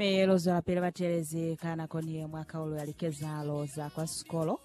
Mi lu zwelapili batelezi ka nako ni ye mwa kaulo ya likezahalo za kwa sikolo.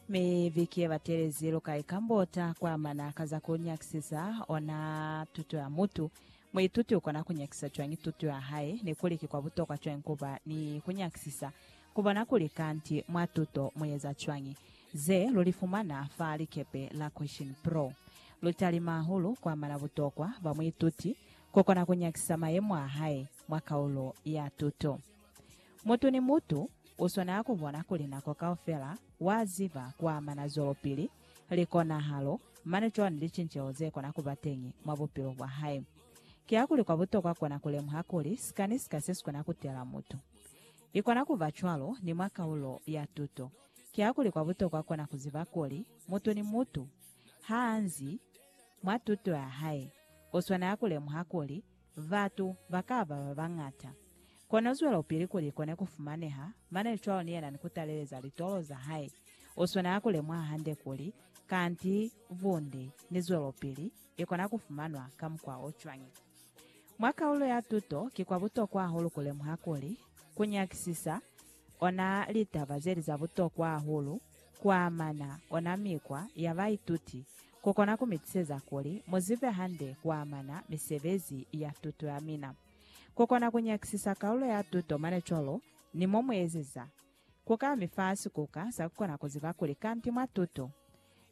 Mi viki ye batelezi lu ka ikambota kwa amana ka za ku nyakisisa ona tuto ya mutu. Muituti u kona ku nyakisa cwañi tuto ya hae, ni kuli ki kwa butokwa cwañi ku ba ni ku nyakisisa ku bona kuli kanti mwa tuto mu eza cwañi? Ze lu li fumana fa likepe la Question Pro lu talima hahulu kwa amana butokwa bwa muituti ku kona ku nyakisa mayemo a hae mwa kaulo ya tuto. Mutu ni mutu u swanela ku bona kuli nako kaufela wa ziba ku amana zwelopili, likonahalo, mane cwalo ni licinceho ze kona ku ba teñi mwa bupilo bwa hae. Kiakuli kwa butokwa kona ku lemuha kuli sika ni sika se si kona ku tela mutu. I kona ku ba cwalo ni mwa kaulo ya tuto. Kiakuli kwa butokwa kona ku ziba kuli mutu ni mutu Ha nzi mwa tuto ya hae, u swanela ku lemuha kuli batu ba ka ba ba bañata. Kono zwelopili kuli ikone ku fumaneha mane cwalo ni yena ni ku taleleza litolo za hae. U swanela ku lemuha hande kuli kanti bunde ni zwelopili i kona ku fumanwa ka mukwa o cwañi. Mwa kaulo ya tuto, ki kwa butokwa hahulu ku lemuha kuli ku nyakisisa ona litaba zeli za butokwa hahulu kuamana ona mikwa ya baituti kukona kumitiseza kuli muzibe hande kuamana misebezi ya tuto yamina. Kukona kunyakisisa kaulo ya tuto mane cwalo ni momuezeza kuka mifa sikuka sakukona kuziba kuli kanti mwa tuto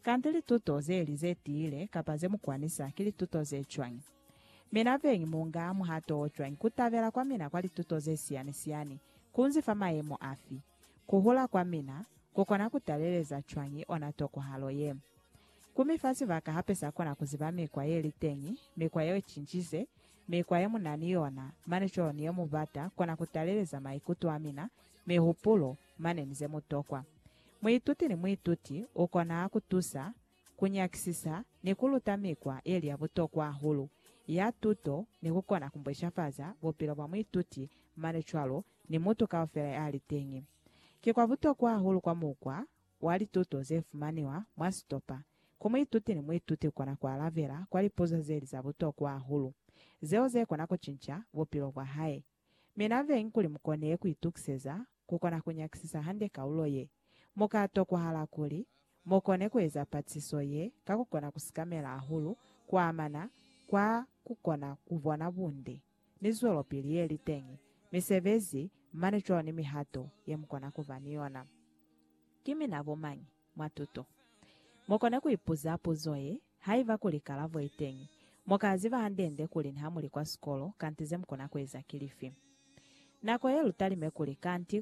Kanti lituto zeli ze tiile kapa ze mu kwanisa ki lituto ze cwañi? Mina beñi mu nga muhato o cwañi ku tabela kwa mina kwa lituto ze siyani-siyani? Ku nzi fa mayemo afi? Ku hula kwa mina ku kona ku taleleza cwañi ona tokohalo ye? Ku mi fa sibaka hape sa kona ku ziba mikwa ye li teñi, mikwa ye cincize, mikwa ye mu na ni yona, manicolo ni ye mu bata kona ku taleleza maikuto a mina, mihupulo, mane ni ze mu tokwa. Muituti ni muituti u kona ku tusa, ku nyakisisa, ni ku luta mikwa ye li ya butokwa hahulu ya tuto ni ku kona ku mbweshafaza bupilo bwa muituti mane cwalo ni mutu kaufela ya li teñi. Ki kwa butokwa hahulu kwa mukwa wa lituto ze fumaniwa mwa sitopa ku muituti ni muituti kona ku alabela kwa lipuzo ze li za butokwa hahulu zeo ze kona ku cinca bupilo bwa hae. Mi na veng kuli mu kone ku itukiseza ku kona ku nyakisisa hande kaulo ye, mu ka tokwahala kuli mu kone ku eza patiso ye ka ku kona ku sikamela hahulu ku amana kwa ku kona ku bona bunde ni zwelopili ye li teñi, misebezi, mane cwalo ni mihato ye mu kona ku ba ni yona. Ki mina bo mañi? mwa tuto. Mu kona ku ipuza puzo ye, Haiba kuli kalabo i teñi, mu ka ziba hande-nde kuli niha mu li kwa sikolo kanti ze mu kona ku eza ki lifi. Nako ye lu talime kuli kanti